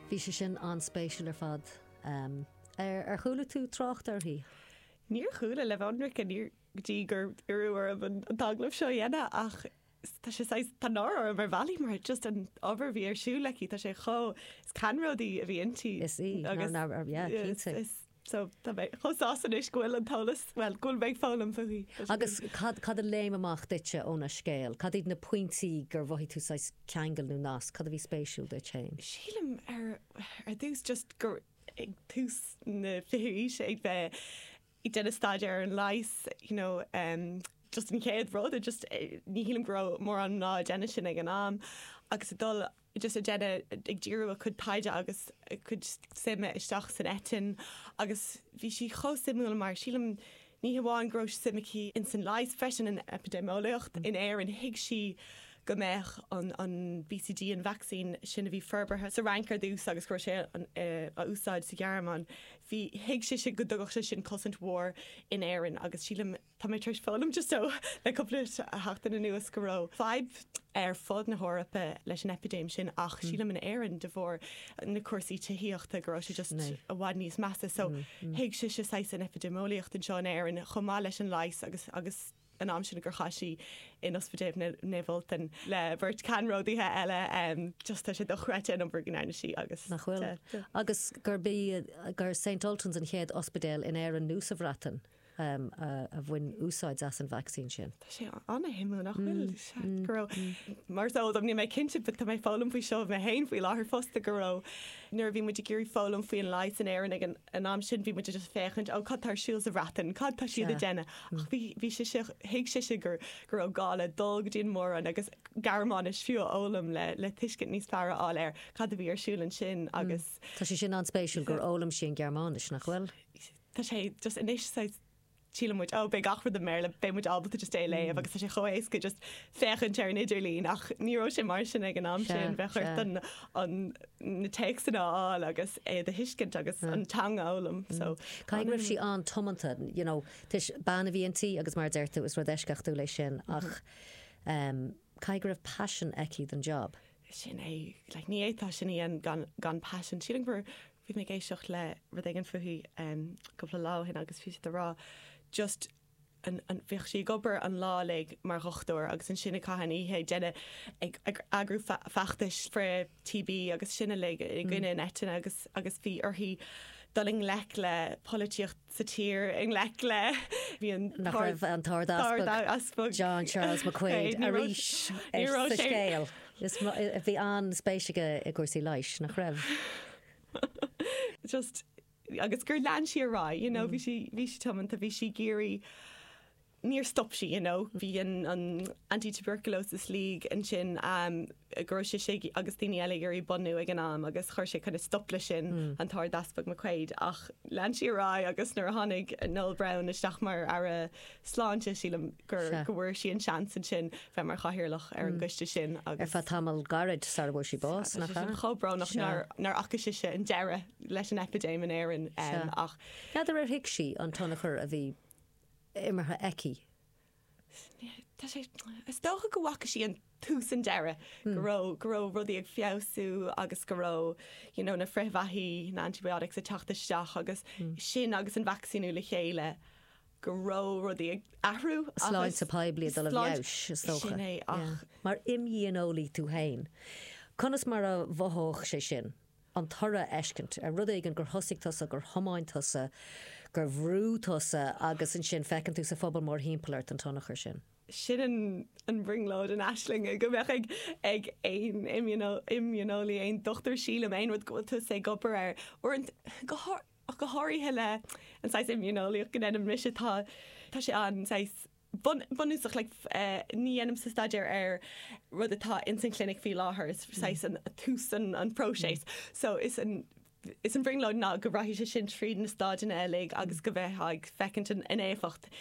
Bhí sé sin an-spéisiúil ar fad. Ar chuala tú trácht uirthi? Níor chuala, le bheith ionraic, níor go dtí gur iarradh orm an t-agallamh seo a dhéanamh ach tá sé saghas, tá náire orm ar bhealaí mar just an obair a bhí ar siúl aici, tá sé chomh, is ceannródaí a bhí inti. Is í, ná, ná, yeah, cinnte. so tá mé chomh sásta anois go bhfuil an t-eolas, bhuel, go bhfuil mé ag foghlaim faoi. Agus cad, cad a léim amach duitse óna scéal? Cad iad na pointí gur mhothaigh tú saghas ceangail nó nasc, cad a bhí spéisiúil duit fhéin? Sílim ar, ar dtús just ag tús na fichiú aoise ag bheith ag déanamh staidéir ar an leigheas you know em just an chéad rud a just ní shílim go raibh mórán mná ag déanamh sin ag an am agus ag dul just ag déanamh, ag díriú a cuid taighde agus a cuid suime isteach san eitinn agus bhí sí chomh suimiúil mar sílim ní hamháin go raibh suim aici insan leigheas freisin an eipidéimeolaíocht in Éirinn thuig sí go mbeadh an an BCG an vacsaín sin a bhí forbartha sa Fhrainc ar dtús agus go raibh sé á úsáid sa Ghearmáin bhí thuig sise go dtugadh sé sin cosaint mhór in Éirinn agus sílim Tá mé tar éis foghlaim just ó le cúpla seachtain anuas go raibh fadhb ar fud na hEorpa leis an eipidéim sin ach sílim in Éirinn de bharr na cúrsaí tithíochta go raibh sé just i bhfad níos measa so thuig sise saghas an eipidéimeolaíocht anseo in Éirinn chomh maith leis an leigheas agus an t-am sin gur chaith sí in ospidéal Naomh Ultan le beirt ceannródaithe eile em just tá sé dochreidte an obair go ndearna sí agus Nach bhfuil. Agus gurb í, gur Saint Ultans an chéad ospidéal in Éirinn nó sa Bhreatain? a bhain úsáid as an vacsaín sin. Tá sé ana-shuimiúil, nach bhfuil? Go raibh, mar is eol dom, níl mé cinnte, but tá mé ag foghlaim faoi seo mé féin faoi láthair fosta, go raibh, nuair a bhí muid ag iarraidh foghlaim faoi an leigheas in Éirinn ag an am sin, bhí muid just ag féachaint, oh, cad tá ar siúl sa Bhreatain, cad tá siad ag déanamh? Ach bhí, bhí sise, thuig sise go raibh gá le dul go dtí an mhór-roinn agus Gearmáinis fiú a fhoghlaim le, le tuiscint níos fearr a fháil ar cad a bhí ar siúl ansin agus. Tá sé sin an-spéisiúil gur fhoghlaim sí an Ghearmáinis, nach bhfuil? Tá sé just anois saghas síleann muid oh beidh gach rud i mBéarla beidh muid ábalta just é a léamh agus tá sé chomh héasca just féachaint ar an idirlín ach ní raibh sé mar sin ag an am sin bheadh ort an an na téacsanna a fháil agus iad a thuiscint agus an teanga a fhoghlaim so Caithfidh go raibh sí an-tiomanta you know toisc bean a bhí inti agus mar a deir tú is rud eisceachtúil é sin ach em caithfidh go raibh passion aici don job. Sin é like ní fhéadfá sin a dhéanamh gan gan passion sílim gur Bhí mé ag éisteacht le rud éigin fúithi em cúpla lá ó shin agus bhí siad a' rá just an, an, bhíodh sí ag obair an lá uilig mar dhochtúir agus ansin ag caitheamh na hoíche ag déanamh, ag, ag eagrú feachtais frith TB agus sin uilig i gcoinne an eitinne agus, agus bhí uirthi dul i ngleic le polaitíocht, sa tír i ngleic le Bhí an nach raibh an tArd-Easpag John Charles McQuaid arís sa scéal. Bhí an-spéis aige i gcúrsaí leighis, nach raibh? Just agus gur lean sí ar aghaidh, you know, bhí sí tiomanta, bhí sí ag iarraidh níor stop sí, you know. Bhí an an Anti-Tuberculosis League ansin eh go raibh sise agus daoine eile ag iarraidh bunú ag an am agus chuir sé kind of stop leis sin, an tArd-Easpag McQuaid, ach lean sí ar aghaidh agus nuair a tháinig Noel Browne isteach mar Aire Sláinte sílim gur Sea. go bhfuair sí an seans ansin bheith mar chathaoirleach ar an gcoiste sin agus Ar feadh tamall gairid sara bhfuair sí bás, nach ea? chomh brónach Sea. nár fhaca sise an deireadh leis an epidéim in Éirinn em Sea. ach N'fheadar ar thuig sí an tionchar a bhí imeartha aici. Tá sé, is dócha go bhfaca sí an tús an deiridh, go raibh, go raibh rudaí ag feabhsú agus go raibh you know na frithbheathaí, na antibiotics ag teacht isteach agus sin agus an vacsaíniú le chéile go raibh rudaí ag athrú agus. Sláinte poiblí ag dul i bhfeabhas is dócha. Sin é ach. Mar imdhíoneolaí tú féin, conas mar a mhothódh sé sin an toradh a fheiscint ar rud éigin gur thosaigh tusa, gur thiomáin tusa, gur bhrú tusa agus ansin feiceann tú sa phobal mórthimpeall ort an tionchar sin. Sin an brionglóid, an aisling go mbeadh ag ag aon imdhíoneolaí, aon dochtúir sílim, aon rud go bhfuil tusa ag obair air, uaireanta, ach go háirithe le an saghas immuneolaíocht go ndéanaim mise, tá tá sé an saghas, bunúsach, like ní dhéanaimse staidéar ar rud atá ins an chlinic faoi láthair, is saghas an tús an phróiseas. So is an is an bhrionglóid ná go rachaidh sé sin tríd na stáideanna uilig agus go mbeifeá ag feiceáilt an éifeacht